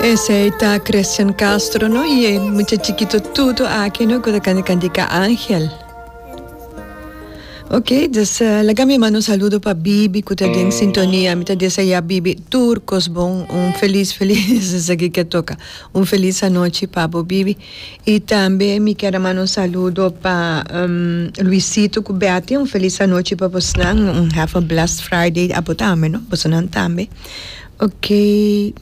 Esey ta Christian Castro no y e mucha chiquito tutu aki no cu ta canta cantica Angel. Ok, dus eh, laga mi manda un saludo pa Bibi cu ta den sintonia. Mi ta desea Bibi tur cos bon. Un feliz, feliz, esaki ke toca. Un feliz anochi pa bo Bibi. Y tambe mi ker a manda un saludo pa em, Luisito cu Betty. Un feliz anochi pa bosonan. Un have a blessed Friday abo tambe no, bosonan tambe. Ok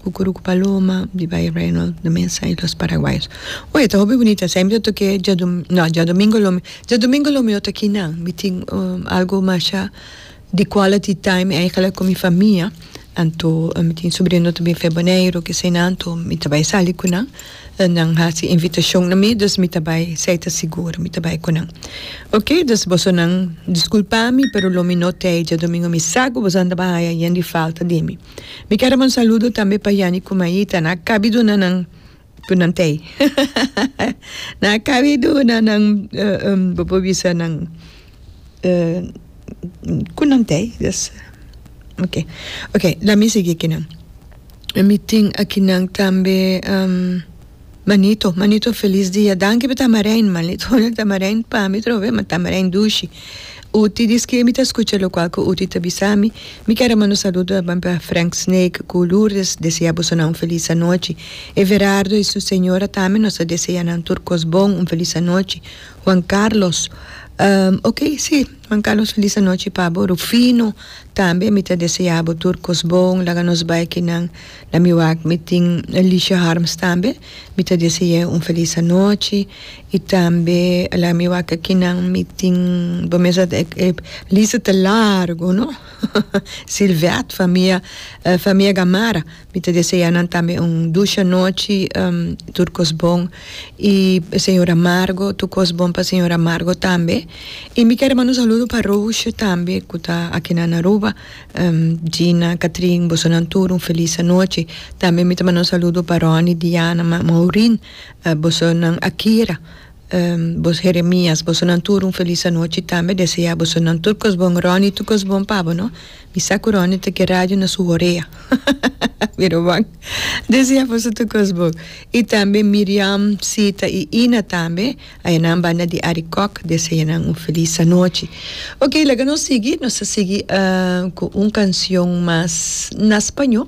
Kukuru ku Paloma di Bay Reynolds na mesa y los Paraguayos. Oye ta hopi bunita esei mi ta toke dia no dia domingo lo mi dia domingo lo mi no ta aki nan mi tin algo masha di quality time eigenlijk ku mi famia anto mi tin sobrino ta bin fe Boneiru kesei nan anto mi ta bay sali ku nan Nan haci invitacion na mi, dus mi ta bay, sai ta sigur, mi ta bay cu nan. Ok, dus bosonan disculpa mi, pero lo mi no t'ey diadomingo, mi sa cu boso a tabata haya yen di falta di mi. Mi quier a bay un saludo tambe pa Yanni cu Maita, nan a cabi duna nan cu nan t'ey, hahahaha, nan a cabi duna nan, bo por bisa nan. ku nan ta ei des oke oke lami sigui kinan mi tin akinan tambe manito manito felis dia danki pa tamaren manito tamaren pami trove ma tamaren dushi uti di ski mi ta skucha lokual ku uti ta bisami mi ker a manda un saludo tambe pa Frank snake ku Lourdes desea boso nan un felis anochi Everardo y su señora tambe nos ta desea nan tur kos bon un felis anochi. Juan Carlos, Ok, si. Juan Carlos, Feliz anochi pa bo. Rufino, Tambe mi ta desea bo tur cos bon. Laga nos bay kinan na mi wak. Mi tin Alicia Harms tambe. Mi ta dese'e un feliz anochi. Y tambe laga mi wak kinan mi tin bo mes a e lista ta largo, no? Silvet famia, famia Gamarra. Mi ta desea nan tambe un dusha nochi tur kos bon y señor Amargo tur kos bon pa señor Amargo tambe y mi ker manda un saludo pa Roosje tambe cu ta akinan na Aruba Gina Catrin bosonan tur un feliz anochi tambe mi ta manda un saludo pa Ronnie Diana Maurin bosonan Akira Bos Jeremias, bosonan tur un felis anochi tambe desea bosonan tur cos bon Ronnie tur cos bon pa bo no mi sa cu Ronnie ta ke radio na su horea pero bon desea boso tur cos bon y tambe Miriam Sita y Ina tambe ayenan banda di Arikok desea nan un felis anochi ok laga nos sigui nos ta sigui cu un cancion mas na spaño.